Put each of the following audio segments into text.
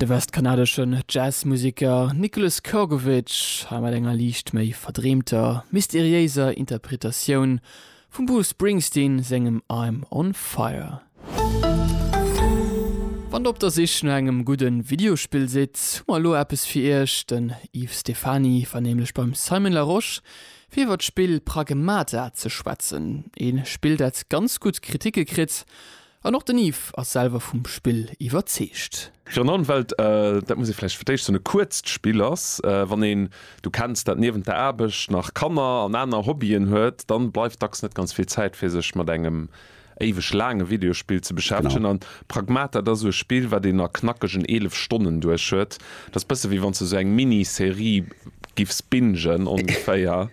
De westkanadeschen Jazzmuseker Nicholas Kurgovich ha mat enger liicht méi verdreemter, mysteriéiser Interpretatioun vum Bruce Springsteen sengem I'm on fire. Wann der op der Sich no engem gudde Videospill sidd, hu mer elo eppes fir iech. Den Yves Stephany war nämlech beim Simon Larosche fir iwwer d'Spill Pragmata ze schwätzen. Ee Spill dat ganz gutt Kriticke kritt An och den Yves ass selwer vum Spill iwwerzeegt. Renan, well dat muss ee vläicht fir d'éischt soen, e kuerzt Spill ass. Wann een, du kenns dat, niewent der Aarbecht nach Kanner an aner Hobbyen huet, dann bleift dacks net ganz vill Zäit fir sech mat engem éiweg laange Videospill ze beschäftegen. An Pragmata, dat ass esou e Spill, wat een a knackegen 11 Stonnen duerch huet. Dat ass bësse wéi wann s de sou eng Mini-Serie giffs bingen, ongeféier.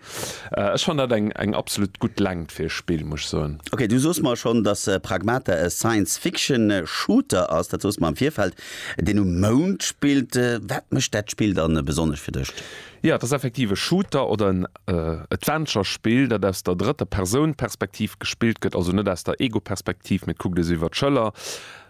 Ech fannen dat eng eng absolut gutt Längt fir e Spill, muss ech soen. Ok, du soos mer schonn, dass Pragmata e Science-Fiction-Shooter ass. Dat soos mer am Virfeld, deen um Mound spillt. Wat mécht dat Spill dann besonnesch fir dech? Jo, et ass effektiv e Shooter oder en Adventure-Spill, dat aus der drëtter Persoun-Perspektiv gespillt gëtt, also net aus der Ego-Perspektiv, mee et kuckt ee sou iwwer d'Schëller.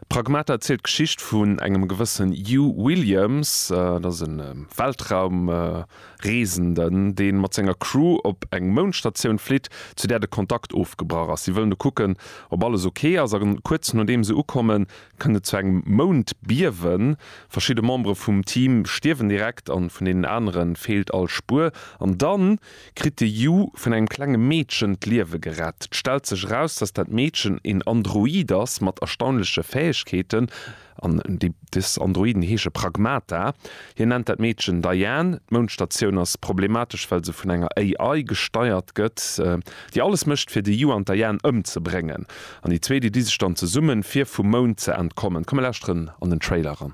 Pragmata zielt d'Geschicht vun engem gewëssen Hugh Williams, dat ass e Weltraumreesenden, dee mat senger Crew op eng Moundstatioun flitt, zu där de Kontakt ofgebrach ass. Si wëllen do kucken, ob alles ok ass, a kuerz nodeem se ukommen, kënnt et zu engem Moundbiewen. Verschidde Membere vum Team stierwen direkt, a vun deenen anere feelt all Spuer. An dann? kritt de Yu vun engem klenge Meedchen d'Liewe gerett. Et stellt sech eraus, dass dat Meedchen een Android ass mat erstaunleche Fäegkeeten, an des Androiden heesche Pragmata. Hien nennt dat Meedchen Diane. D'Moundstatioun ass problematesch, well se vun enger AI gesteiert gëtt, déi alles mécht fir de Yu an d'Diane ëmzebréngen. An déi zwee, déi di sech dann zesummen, fir vum Mound ze entkommen. Komm, mir lauschteren an den Trailer eran.